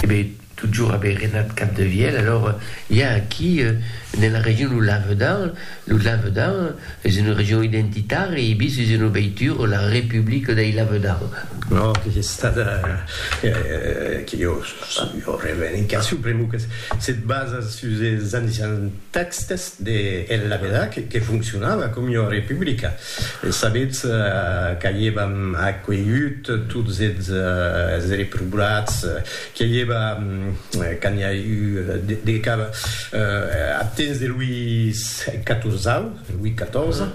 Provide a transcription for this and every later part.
Be totjorn a be renat Capdevièlh, alors i a aquí ne la region lo Lavedan, lo Lavedan es una region identitària e ibi sus una veitura la Republica dei Lavedan. No, que es estada, que jo jo revendicacion pr'amor que se basa sus es ancians tèxtes de El Lavedan que foncionava com una republica. E sabetz qu'avièvam acuelhut tots es reprobats, que i èva quand n'i a eu de cap ath temps de Louis Catorzau, Louis XIV,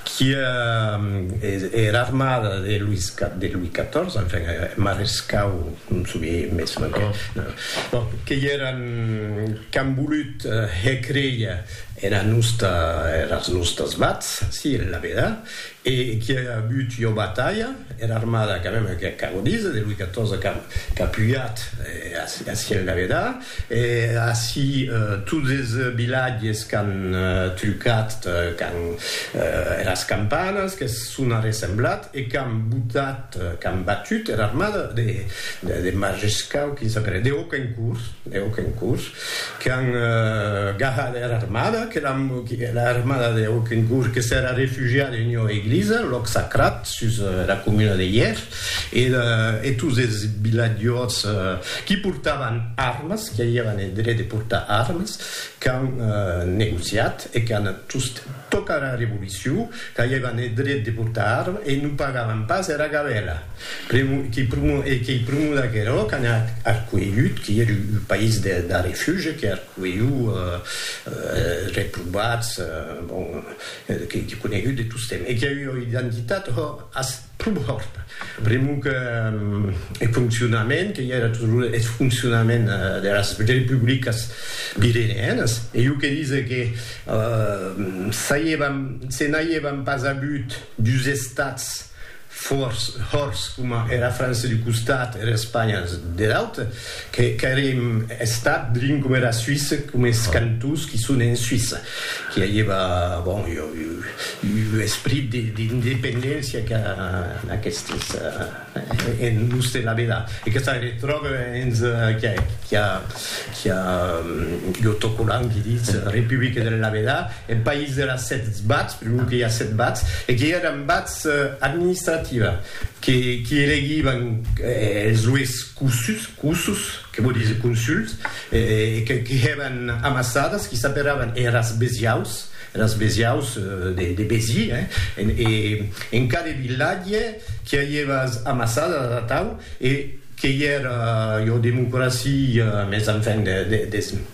qui er armada de Louis XIV, enfin er marescau, non soubie mès non, que i èran qu'an volut hèr créer Era nosta, eras nostas vats, si, la vedat, e qui a agut ua batalha, era armada quand même que ac avo dís, de Louis XIV qu'a qu'a pujat a si en la vedat, e a si tots es vilatges qu'an trucat quand eras campanas que son arressemblat e qu'an botat, qu'an batut era armada de de de Majescau, quin s'apelet, de Hauquencourt, de Hauquencourt. Qu'an gahat era armada, que era armada de Hokencourt que s'èra refugiada en ua eglisa, lòc sacrat, sus era comuna de Hièr, e tots es vilatjors qui portavan armas, qui avián eth dret de portar armas, qu'an negociat e qu'an just tocat era revolucion, qu'aievan eth dret de portar arma e non pagavan pas era gabela. E qu'ei prumor d'aquerò qu'an arcuelhut, qui ei un país de refugi, que arcuelhu reprobats, bon, que ei conegut de tostemps e qu'ei ua identitat, ho, Prumòrt, pr'amor que eth foncionament que i era toujours eth foncionament deras republicas pireneenas, e jo que dise que se n'aievan pas avut dus estats fòrts coma era França d'un costat e era Espanha der aute, Qu'èrem estat drin coma era Suisse, coma es cantons qui son en Suisse, qui aieva, bon, ua esprit d'independéncia qu'a aquestes en l'ús de la vela. E que ça retròbe hens qui a l'autocollant qui ditz Republique de la vela, eth país de las sèt bats, per lo que i a sèt bats, e qui èran bats administrativa, qui elegivan es ues. Cussus, cussus, que vò díser consuls, que hèvan amassadas, qui s'aperavan eras besiaus, eras besiaus de Béziers, hein, e en cada vilatge qui a ievas amassadas atau, e qu'ei era, jo democracia, mes enfin, des.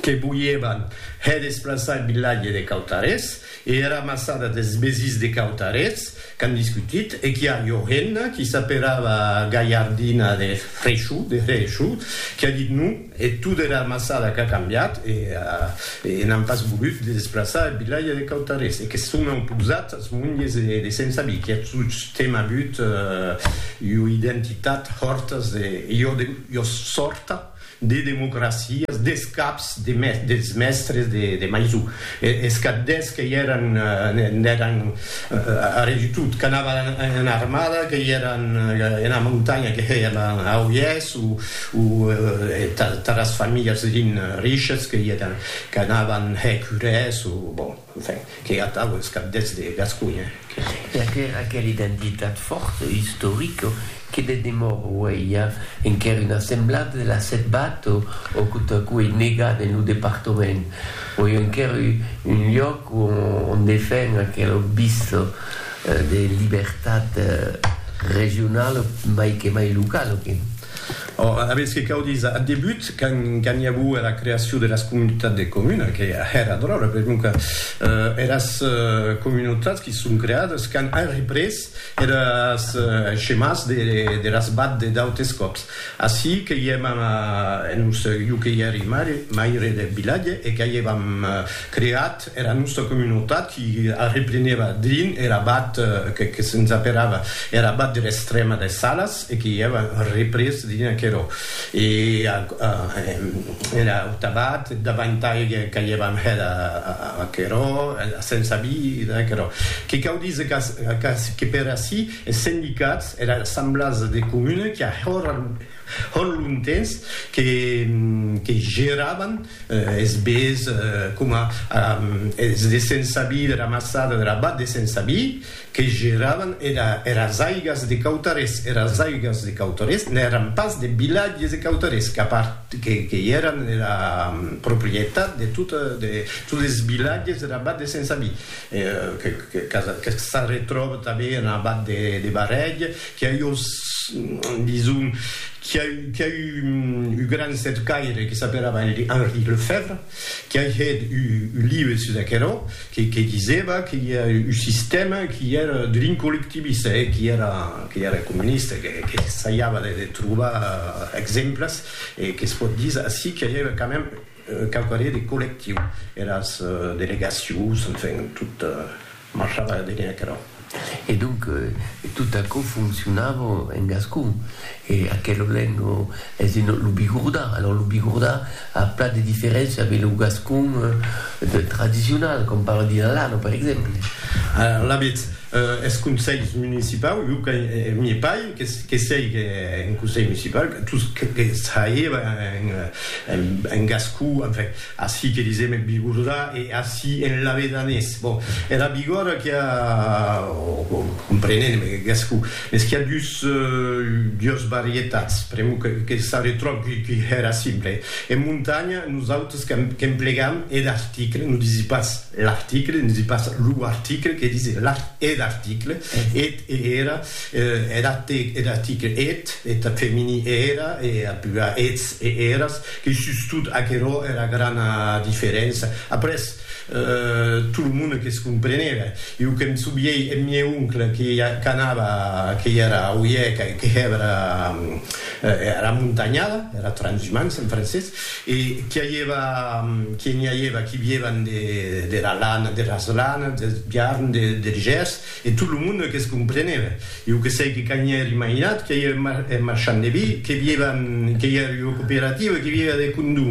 que voièvan hè desplaçar eth vilatge de Cautarés e era massada des Besís de Cautarés qu'an discutit e qu'i a ua hemna qui s'aperava Galhardina de Hrechoux, de Hrechoux, qui a dit non e tot era massada qu'a cambiat e e n'an pas volut de desplaçar eth vilatge de Cautarés e que son auposat as monges de Sent Sabí qui a tostemp avut ua identitat hòrtas de ua sòrta. de democracias, des caps de mes, dels mèstres de, de Maisou, e, es capdèths que i èran, n'èran a res du tout, qu'anavan en, en armada, que i èran ena montanha, que hèian a oièths, o, o taras familhas rin, riches, que i èran, qu'anavan hèr curès, o, bon. Enfin, que atau es cap deths de Gasconha, que se. E aquera aquela identitat fòrta, istorica, que de demòra auei ja enquèr una semblada de la Setbat o o quo ta quo ei negat en lo departament, o ei enquèr u un lloc o on defen aquela obvista de libertat regionala mai que mai locala, que. Ora, avètz que cau díser, ath debut, quand i aguo era creacion de las comunitats de comuna, que hèra dròlle, per non que eras comunautats qui son creades quand an représ eres schemas de las bad de d'autes còps. Ací que i èm a, en un, jo que i èri maire deth vilatge e qu'a i èvam creat, Era nòsta comunotat i arreplenèva drin er abat que que se'ns aperava er abat der Estrèma des Salas e que i èva représ drin aquerò. E a a er aut abat davantai qu'aievam hèt a aquerò a se'ns avi da aquerò. Que cau díser qu'ac que per ací es sendicats, era assemblasa de comuna qu'i a hòr Hòn lontens que que geravan es bés coma es de Sensabi, de la Massada, de la Bat de Sensabi, que geravan era eras aigas de Cautarés. Eras aigas de Cautarés n'èran pas deth vilatge de Cautarés, qu'a part que que i èran era proprietat de tota de tots es vilatges dera Bat de Sensabi, que que que s'arretròba tanben ena Bat de de Barrèg, Qu'i a eu, dison, qu'i a eu, qu'i a eu un gran cercaire que s'apelava Henri Lefèvre, qu'i a hèt un live sus aquerò, que que disèva que i a un sistèma qu'i èra drin collectivista e qu'i èra, qu'i èra comunista, que que essaiava de de trobar exemples e que's pòt díser ací qu'i a eu quand même quauquarré de collectiu, eras delegacions, enfin, tot, Marchava la benèa cara. E donc, tot aquò foncionava en gascon. E aquel olèng es de lo Bigordà. Alòs, lo Bigordà a plan de diferéncia de lo gascon tradicional, com parla de Lallana, per exemple. Alavetz, es conselhs municipaus, jo que n'i pai, que sièg en conselh municipau, tot que sièva en gascon, enfin, Ací que disèm eth bigordà e ací en labedanés. Bon, era bigòrda qu'i a, o comprenent en gascon, mès qu'i a dus, dues varietats, pr'amor que s'arretròb qu'i hèra simple. En montanha, nosautres qu'emplegam eth article, non disi pas l'article, disi pas lo article, que disi eth article, eth e era, er ath article eth, eth femení era, e ath plural eths e eras, E sustot aquerò èra grana diferença. Après, tot lo monde que's comprenèva. Iu que'm sobièi eth mieu oncle que qu'anava, que i era oièc, que hèvera era montanhada, era transhumance en francés, e qui aièva, qui n'i aièva qui vièvan dera lana, deras lanas, deth biarn, der gèrs, E tot lo monde que's comprenève. Iu que sei que quand ièr imaginat que ièr un marchand de vi, que vièva, que ièr ua cooperativa, que vièva de condó,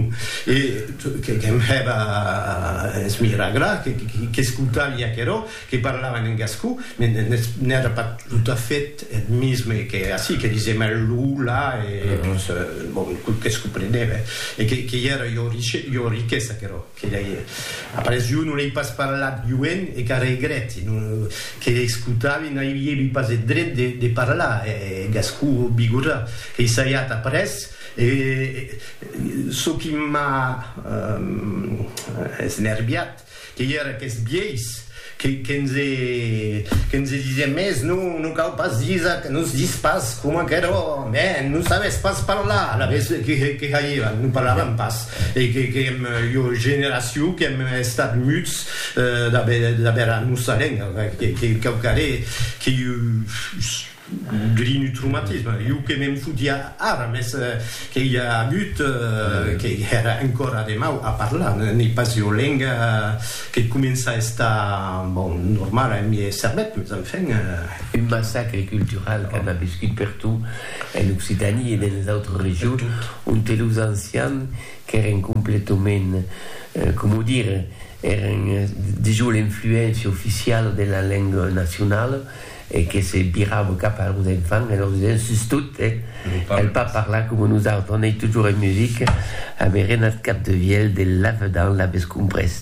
e que'm hèva es miragrar, qu'escoutavi aquerò, que parlavan en gascon, mès n'èra pas tot a fait eth misme que ací, que disèm eth lo, la, e bon, que's comprenève, e que ièra ua riquesa aquerò. Que lei après jo non lei pas parlat joen e qu'a regrèti non que escotavi n'aivievi pas eth dret de de parlar e gascon o bigorrà qu'ei saiat après e çò qui m'a esnerviat qu'ei er aqueth biais Que nse disien mès, non, non cau pas disa que nos dis pas coma qu'èra ò mèn, non sabes pas parlar, la ves que haivan, non parlavan pas, e que qu'èm ua generacion qu'èm estat muts d'aver a nosa lenga, que quauquarré que Grinutrumatisme, jo que me'n fotia ara, mès que i a agut, que èra encòra de mau a parlar, n'ei pas ua lenga que comença a estar, bon, normala en miei cervèth, mès enfin. Un massacre cultural qu'an aviscut pertot en Occitània e denes autres regions, onte los ancians qu'èren completament, coma o dire, èren dejós l'influéncia oficiala de la lenga nacionala, e que se virava cap a los enfants e lor disent, sus tot, cal pas parlar coma nosautres, on ei totjorn en musica, avèren ath cap de vielh de lavedan, l'aves comprés?